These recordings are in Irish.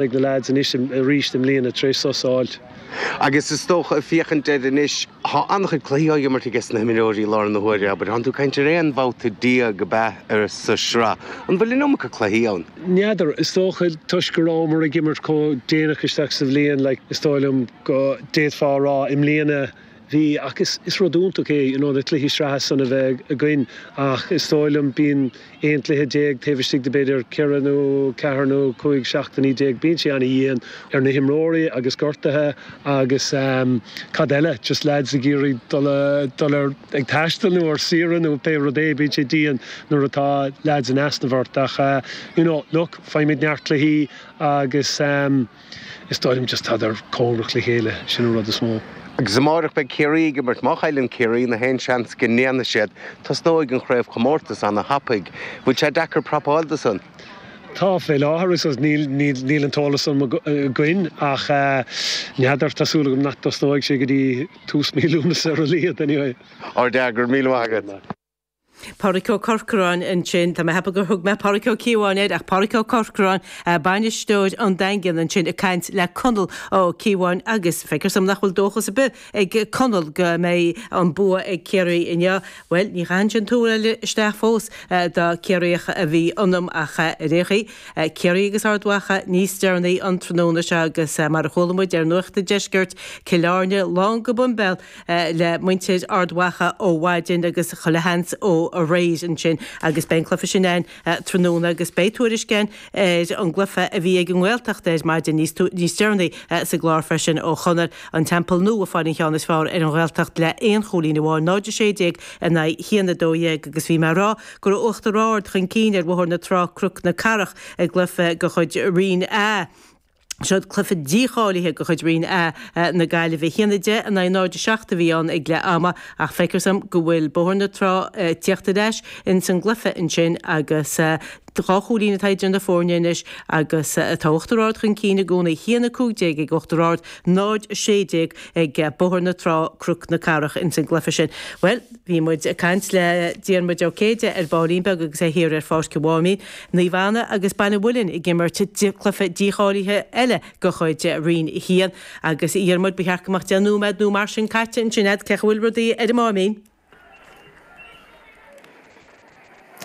Beidh na leaids anois arís i mbliana tar éis sos a fháilt. Agus is dócha, féachaint air anois, tá an-chuid cluichí á imirt aiges na himreoirí i lár na huaire, abair. Thánn tú ag caint ar aon bhabhta déag ab ea sa tsraith. An bhfuil an iomarca cluichí ann? N'fheadar. Is dócha toisc go rabhamar ag imirt chomh déanach isteach sa bhliain, like, is dóigh liom go d'fhéadfá a rá i mbliana, Bhí, ach is rud iontach é you know na cluichí sraithe san a bheith againn ach is dóigh liom bíonn aon cluiche déag taobh istigh de b'fhéidir ceithre nó ceathair nó cúig seachtainí déag bíonn sé an-dhian ar na himreoirí agus gortuithe agus ehm cad eile just lads ag iarraidh dul a dul ar ag taisteal nó ar saoire nó pé rud é bíonn sé dian nuair atá lads in easnamh ort ach eh you know look faighimid neart cluichí agus ehm Is dóigh liom just tá sé deacair foireann a chur le chéile, sin an rud is mó. Agus amárach beidh Ciarraí ag imirt, má chailleann Ciarraí nó aon seans go ndéanfaidh siad, tosnóidh an chraobhchomórtas ana thapaidh. Bhfuil sé deacair prapáil do san? Tá, fé láthair is níl an t-eolas san againn ach n'fheadar, tá súil agam nach dtosnóidh sé go dtí tús mí Lúnasa ar a laghad anyway. Ar deireadh, go raibh míle maith agat. Pádraic Ó Corcoráin ansin. Tá mé ag ceapadh gur thug mé Pádraic Ó Cíobháin air, ach Pádraic Ó Corcoráin, bainisteoir an Daingin ansin ag caint le Conall Ó Cíobháin agus feictear dom nach bhfuil dóchas ar bith ag Conall go mbeidh an bua ag Ciarraí inniu. Bhuel, níor chaith mise an tuáille isteach fós dá mba Ciarraíoch a bhí ionam ach ar aon chaoi. Ciarraí agus Ard Mhacha níos deireanaí an tráthnóna seo agus mar a chuala muid ar Nuacht an Deiscirt, Cill Airne lán go boimbéal le muintir Ard Mhacha ó mhaidin agus chuile sheans ó aréir ansin agus beidh an cluiche sin ann tráthnóna agus beidh tuairisc ann ar an gcluiche a bhí ag an nGaeltacht ar maidin níos deireanaí sa gclár freisin ó Chonor, An Teampall Nua a fuair an ceann is fearr ar an Ghaeltacht le aon chúilín amháin, 0-16 in aghaidh 1-12 agus bhí mé a rá go raibh Uachtar Ard chun cinn ar Bhóthar na Trá-Croc na Cathrach i gcluiche de chuid Roinn a Seo cluiche dícháilithe de chuid Roinn 1A na Gaillimhe. 1-10 in aghaidh 0-7 a bhí ann ag leath ama ach feicthear dom go bhfuil Bóthar na Trá ag tíocht ar ais ins an gcluiche ansin agus dhá chúilín atá idir na fóirne anois agus tá Uachtar Ard chun cinn i gcónaí. 1-15 ag Uachtar Ard, 0-16 ag Bóthar na Trá, Croc na Cathrach ins an gcluiche sin. Bhuel! Bhí muid ag caint le Diarmuid Ó Céide ar ball beag agus é thiar ar Pháirc an Mháimín, Naomh Anna agus Baile an Mhuilinn ag imirt cluiche dícháilithe eile de chuid Roinn 1. Agus, a Dhiarmuid, ba cheart go mbeadh deich nóiméad nó mar sin caite ansin agat. Cé chaoi a bhfuil rudaí ar an Máimín?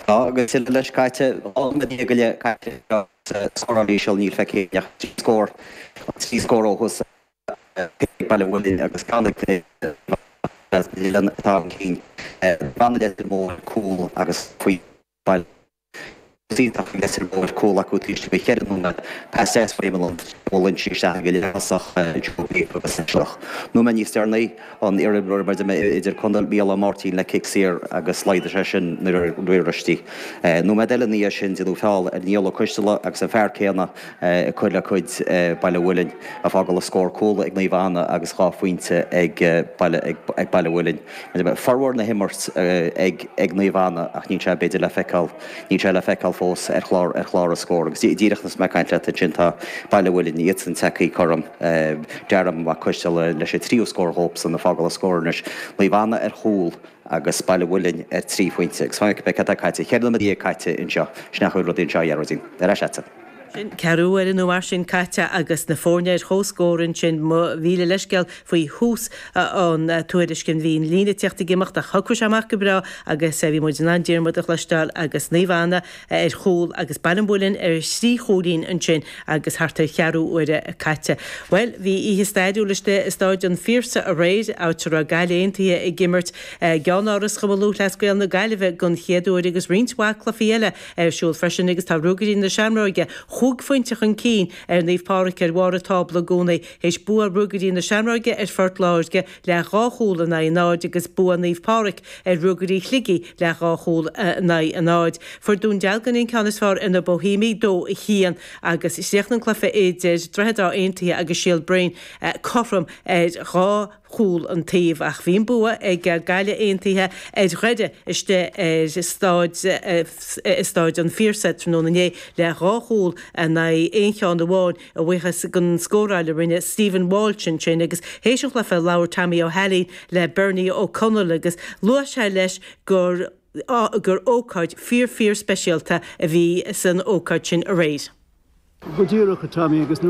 Tá, agus tuilleadh leis caite. Dhá nóiméad déag go leith caite anseo agus scóráil íseal, níl faighte againn ach trí scór ó thús. Baile Mhuilinn agus Gaillimh Is as Baile Mhuilinn atá an Ciarraíoch Brendan Leitir Móir cúl agus faoi Baile Mhuilinn. Is iontach faoi Leitir Móir cúl acu tar éis timpeall cheithre nóiméad. Pas deas faoi Eamon Lunphy a bhuail ionsaí isteach ag an leaththosach Joe Geoghegan agus leath nóiméad níos déanaí an iarimreoir idirchontae Micheál Máirtín le cic saor agus laghdaigh sé sin nuair a bhris sí. Nóiméad eile ina dhiaidh sin deineadh feall ar Niall Ó Coisteala agus an fear céanna ag cur le cuid Baile Mhuilinn, ag fágáil an scór cúl ag Naomh Anna agus dhá phointe ag Baile Mhuilinn. Formhór na himirt ag Naomh Anna ach níl sé b'fhéidir le feiceáil, níl sé le feiceáil fós ar chlár ar chlár an scór agus díreach anois is mé ag caint leat ansin tá Baile Mhuilinn, iadsan tagtha cothrom, Darragh Mac Coistealbha leis an tríú scór dhóibhsean ag fágáil an scór anois. Naomh Anna ar chúl. agus Baile Mhuilinn ar trí phointe agus fan go bhfeice cad tá caite, cheithre nóiméad déag caite anseo, sin an chaoi a bhfuil rudaí anseo a Ghearóidín. Ar ais leatsa. Sin ceathrú uaire nó mar sin caite agus na foirne ar comhscór ansin, mhíle leithscéal faoi thús an tuairisc sin bhí an líne tíocht ag imeacht ach shocraigh sé amach go breá agus bhí muid in ann Diarmuid a chloisteáil agus Naomh Anna ar chúl agus Baile an Mhuilinn ar thrí chúilín ansin agus thart ar cheathrú uaire caite. Bhuel, bhí oíche stairiúil istigh i Stáid an Phiarsaigh aréir, áit a raibh Gaillimh Aontaithe ag imirt i gceannáras Chumann Lúthchleas Gael na Gaillimhe don chéad uair agus roinnt mhaith cluichí eile ar siúl freisin agus tá Ruagairí na Seamróige chúig phointe chun cinn ar Naomh Pádraig ar bharr an tábla i gcónaí théis bua Ruagairí na Seamróige ar Phort Láirge le dhá chúl in aghaidh 0 agus bua Naomh Pádraig ar Ruagairí Shligigh le dhá chúl in aghaidh 0. Fuair Dún Dealgan an ceann is fearr ar na Boihéimigh 2, 1, agus chríochnaigh an cluiche idir Droichead Átha Aontaithe agus Síol Bréin cothrom ar dhá chúl an taobh ach bhí an bua ag Gaillimh Aontaithe ar Dhoire istigh ar Stáid an Phiarsaigh tráthnóna inné le dhá chúl in aghaidh aon cheann amháin. a bhuíochas don scóráil a rinne Stephen Walsh ansin agus théis an chluiche labhair Tommy Ó hAilín le Bernie Ó Conaill agus luaigh sé leis gur gur ócáid fíor fíor speisialta a bhí san ócáid sin aréir. Go díreach, a Tommy, agus